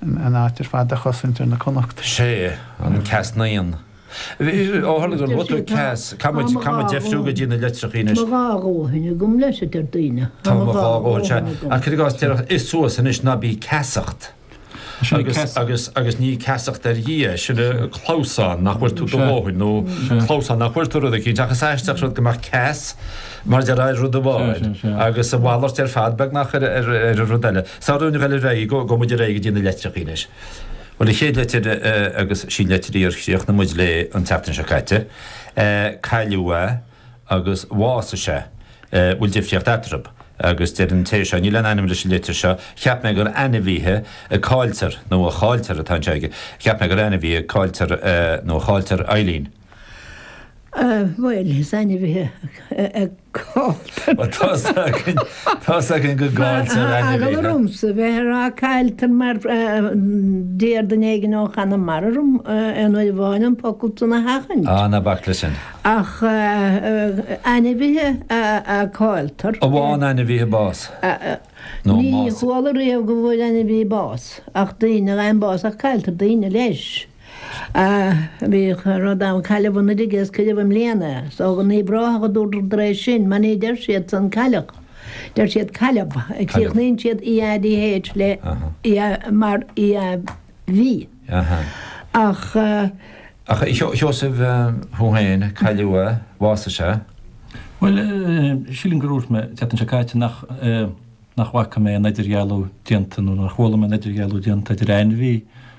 an áit ar fad a chosaint ar na Connachta. Sé, an ceas naíon. Ó tharla gur bhog tú ceas, caithfidh muid deifriú go dtí na litreacha anois. Tá mo dhá dhóthain agam leis, a deir daoine. Tá mo dhá dhóthain agam. Ach cuir i gcás, déarfadh, Ith suas anois, ná bí ag ceasacht. Agus ní ag ceasacht ar Dhia, sin é clamhsán nach bhfuair tú do dhóthain, nó clamhsán nach bhfuair tú rud eicínt. Ach is aisteach an rud go mbeadh ceas mar a déarfá ar rud amháin, agus a mhalairt ar fad beagnach ar an rud eile. Sa Roinn Ghaeilge Ar aghaidh, gabhfaidh muid ar aghaidh go dtí na leitreachaí anois. Bhuel an chéad leitir agus sin leitir í ar chríochnaigh muid léi an tseachtain seo caite. Cailleadh é agus bhásaigh sé. Bhfuil difríocht eatarthu? Agus deir an té seo, níl aon ainm leis an litir seo, cheap mé gur ainmhithe a cailltear nó a chailltear atá anseo aige. Cheap mé gur ainmhithe a cailltear nó a chailltear, Eibhlín. Bhuel, is ainmhithe caillte. Bhuel, tá's againn, tá's againn go gcailltear ainmhithe. Eagla ormsa bheith a rá cailltear mar d'iarr duine éigin ó Chonamara orm aon uair amháin an focal san a sheachaint. Á, ná bac le sin. Ach ainmhithe a cailltear. Ó, bhfaigheann ainmhithe bás. Nó más. Ní chuala riamh go bhfuair ainmhí bás ach daoine, a fhaigheann bás ach cailltear daoine leis. Ach bhí rud ann cailleadh an oiread is cuireadh i mbliana, is dócha in Uíbh Ráthach a dúradar tar éis sin, mar ní deir siad san cailleadh, deir siad cailleadh, críochnaíonn siad EADH le ia mar ia bhí. Ach. A Sheosaimh, thú féin, cailleadh a, bhásaigh sé? Bhuel, sílim gur dhúirt mé, an tseachtain seo caite, nach, nach bhfaca mé aon idirdhealú déanta nó nach bhfoghlaim mé aon idirdhealú déanta idir ainmhí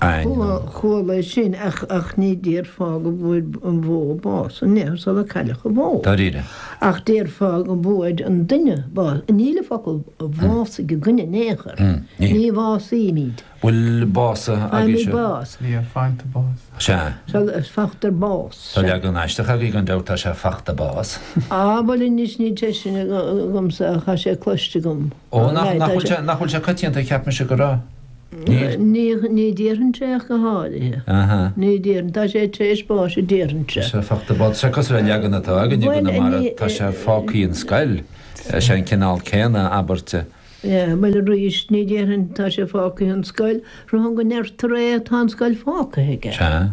ainm. Chuala é sin ach ní déarfá go bhfuair an bhó bás, an ea, sula cailleadh an bhó? Dáiríre? Ach déarfá go bhfuair an duine bás. Níl an focal bhásaigh againn in aon chor. Ní bhásaímid. Bhuel, básaithe a bhí siad. Faighimid bás. Níor faighte bás. Sea. Sea, faightear bás. Tá leagan aisteach agaibh gan dabht, tá sé faighte bás. Á, bhuel anois níl sé sin agamsa ach tá sé cloiste agam. Ó, nach bhfuil sé, nach bhfuil sé coitianta a cheap mise go raibh. Níl? Ní, ní dhéarfainnse é ach go háirithe. Aha. Ní dhéarfainn, tá sé tréis báis a déarfainnse. Sea, faighte bás, sé cosúil le leagan atá againne i gConamara, tá sé fágthaí an scoil, sé an cineál céanna abairt. Sea, bhuel arís, ní dhéarfainn tá sé fágthaí an scoil, braithim go ndeirtear é tá an scoil fágtha aige. Sea.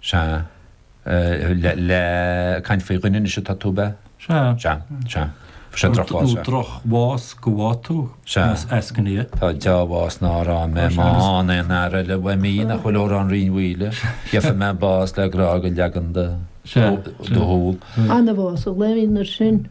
Sea. Le caint faoi dhuine anois atá tú, ab ea? Sea. Sea. Sea. Fuair sé drochbhás, sea. Nó drochbhás go bhfaighe tú, is eascaine é. Sea. Tá dea-bhás nár fhaighe mé má fhaigheann aon fhear eile uaim í nach bhfuil in Amhrán Rinn Mhaoile. Gheobhaidh mé bás le grá do leagan do shúl. Anbhás a Lenin ar sin.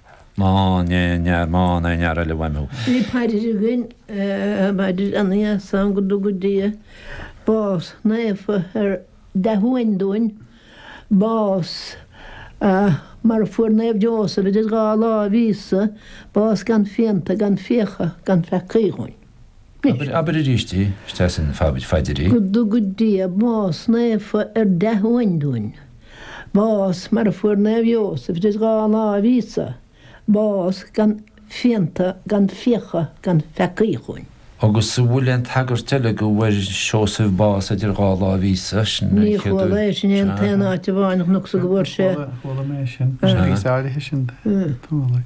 Bhí paidir againn, paidir an Gheasáin, go dtuga Dia bás naofa ar dea-uain dúinn, bás mar a fuair Naomh Jósaf idir dhá láimh Íosa, bás gan phianta, gan fiacha, gan pheacaí dhúinn. Abair aríst é, is deas an phaidir é. Go dtuga Dia bás naofa ar dea-uain dúinn, bás mar a fuair Naomh Iósaf idir dhá láimh Íosa, bás gan phianta gan fiacha gan pheacaí chugainn. Agus an bhfuil aon tagairt eile go bhfuair Seosamh bás idir dhá láimh Íosa? Sin an chéad uair. Ní chuala é sin an t-aon áit amháin a chonacsa go bhfuair sé. Chuala, chuala mé sin. Sin píosa áirithe sin de. Chuala.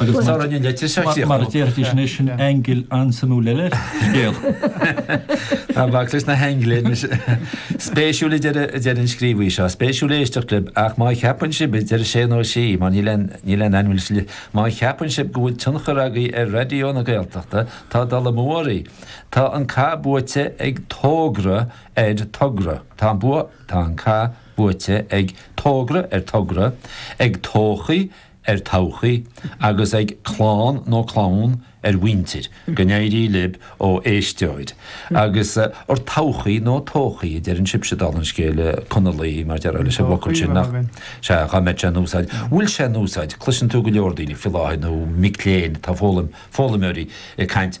Agus tá an litir seo scríofa. Mar a déarfaidís anois, sin angle an-suimiúil eile ar scéal. Ná bac leis na haingil anois. Spéisiúil, a deir an scríobhaí seo, spéisiúil éisteacht libh, ach má cheapann sibh, a deir sé nó sí, mar níl aon ainm leis an litir, má cheapann sibh go bhfuil tionchar agaibh ar Raidió na Gaeltachta, tá dul amú oraibh. Tá an cath buaite ag Tógra ar Togra. Tá an cath buaite ag Tógra ar Togra, ag tóchaí ar todhchaí agus ag clann nó clann ar mhuintir, go n-éirí lib ó éisteoir, agus ar todhchaí nó tóchaí a deireann sibse dála an scéil Conallaigh mar a déarfá leis an bhfocal sin nach, sea, dhá mbeadh sé in úsáid, bhfuil sé in úsáid, cloiseann tú go leor daoine faoi láthair nó mic léinn atá ag foghlaim, foghlaimeoirí ag caint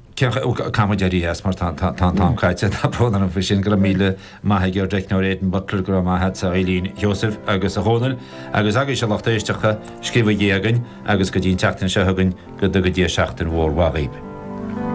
Caithfimid éirí as mar tá an t-am caite. Tá brón orm faoi sin. Go raibh míle maith ag ár dteicneoir Aidan Butler, go raibh maith agatsa a Eibhlín, a Sheosaimh agus a Dhónaill agus agaibhse a lucht éisteachta, scríobhaigí againn agus go dtí an tseachtain seo chugainn go dtuga Dia seachtain mhór mhaith dhaoibh.